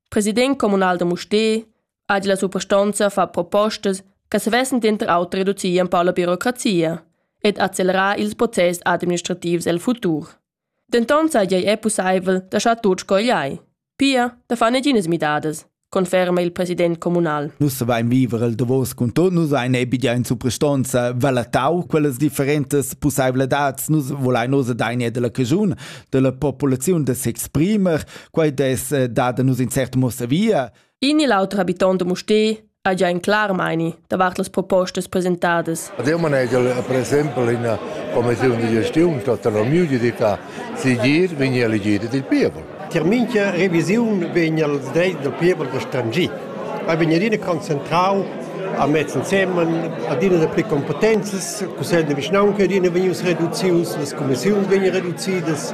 president communal da Mustér ha la suprastonza far propostas che savessen denter auter reducir ein pau la birocrazia ed accelerar ils process administrativs el futur. Denton saja ei pusseivel da schar tut sco igl ei. Pia da far neginas midadas conferma il president communal. Nus vain viver il davos cun tot, nus ein ebia in supristonza valatau, quellas differentas pusseiveladads nus volain osa daine della cagiun, della populaziun da s'exprimer, quai des eh, dada nus in cert mossavia. In e l'altro habitant de Mustè ha già in clar meini davart las propostas presentadas. Devo manegare, per esempio, in commissione di gestione, tutta la mia ditta, si gir, vegni a elegire il pievel. Tir mincha revisiun vegn al dreit del pievel da stangir. ei vegn adina concentrau a mez ensemen adina dapli competenzas cussegl de vischnaunca adina vegnius reducius las commissiuns vegnan reducidas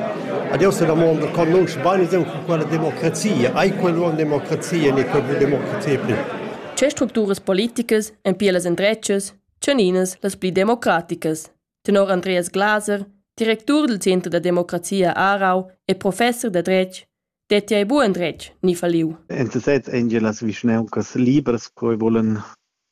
ad essa damonda conosce bene quella democrazia ai quella democrazia ne quella democrazia pli Che structuras politicas ein pia las endretgas tscheninas las pli democraticas tenor Andreas Glaser, directur del Center da democrazia Aarau e professor da dretg Deti ei buc endretg ni falliu. En sesez ein gia las vischnauncas libras co e vulan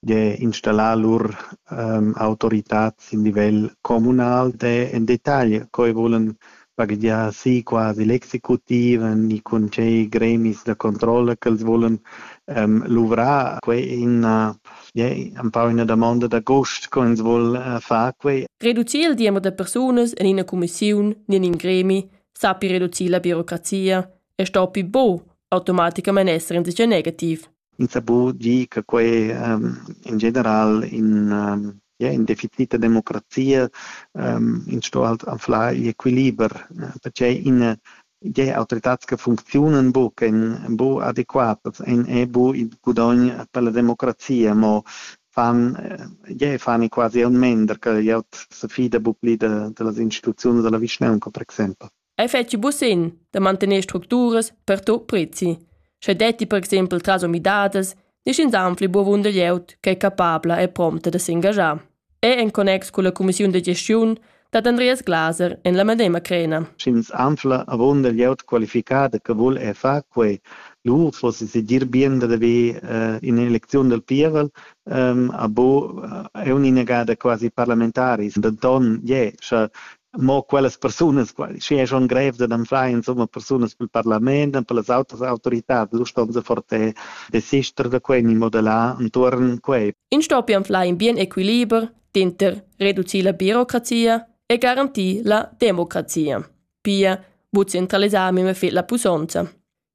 gie installar lur ähm, autoritad sin livel communal de en detagl co e vulan baghegiar si quasi l'executiv ni cun tgei gremis da controlla ch'els vulan ähm, luvrar. Quei è ina, ja, empau ina damonda da gust, co ins vul äh, far quei. Reducir il diember da persunas en ina cumissiun ni in in gremi sappi reducir la birocrazia e sto pi bo automaticamain esser insatge negativ. Ins sa bu dir che quei um, in general in, um, ja, in deficita democrazia um, in sto halt anfla il equiliber, perché in je autoritats che funzionen bu che bu adequat en e bu il gudogn per la democrazia mo fan, jeu fan quasi aunc mender che glieud se fida buc pli de, dellas instituziuns della vischnaunca, per exempel. Ei fetschi buc sin da mantener structuras per to prezi. Sche detti per exempel tras umidadas, niscin zanfli buvunder glieud che è capabla e prompta de s'engagiar. E en connex con la Commissiun de gestiun dad Andreas Glaser en la medema crena. Sch'ins anfla avunda glieud qualificada che vul er far quei, lur fossi segir bien dad haver in'elecziun dal pievel, abo è un'inagada quasi parlamentaris, denton je, sche mo quellas persunas, sche è schon grev dad anflar insomma persunas pil parlament e per las autras autoritads, lu ston se forte desister da quei ni modellar entuorn quei. In stoppi anflar in bien equiliber Dinter reducir la birocrazia e garantir la democrazia. Pia, bu centralisar mema fet la pusonza.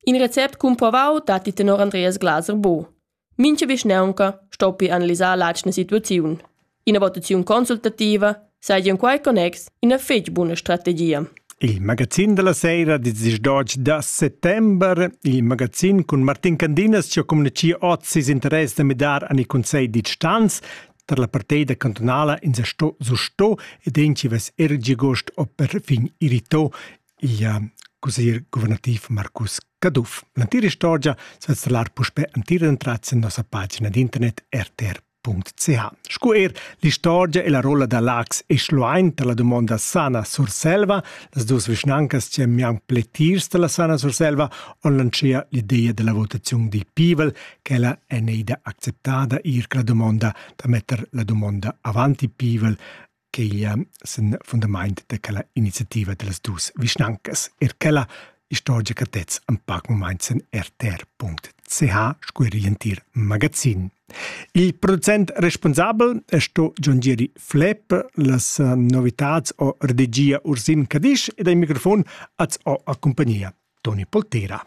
In recept cumprovau datti tenor Andreas Glaser bo. Mincha vischnaunca stoppi analisar l'atgna situaziun. Ina votaziun consultativa saja in quai connex ina fetg buna strategia. Il magazin della sera di 18 da settembre, il magazin cun Martin Candinas ci ha communici oz ses interesse da midar an il Consell di Stanz, tar la parteida cantunala ins sto susto ed entschivas er giagost o perfin irrito il uh, cusir guvernativ Marcus Caduff. L'entira istorgia svizzalar puspe entira entrats en nossa pagina d'internet rtr.ch. Scu er l'istorgia e la rolla da Lax e Schluein tar la dumonda Sana Surselva, las dus vischnancas che mian pletirs da la Sana Surselva on lancia l'ideia della votazione di Pivel ch'ella è neida acceptada eir la dumonda da metter la dumonda avant il pievel ch'igl sen fundamaint da quella iniziativa da las dus vischnancas. Er quella istorgica tez am pac moment sen rtr.ch scu er l'entir magazin. Il producent responsabel è sto John Geri Flepp, las novitats o regia Ursin Cadisch ed ai microfon az ho a compagnia Toni Poltera.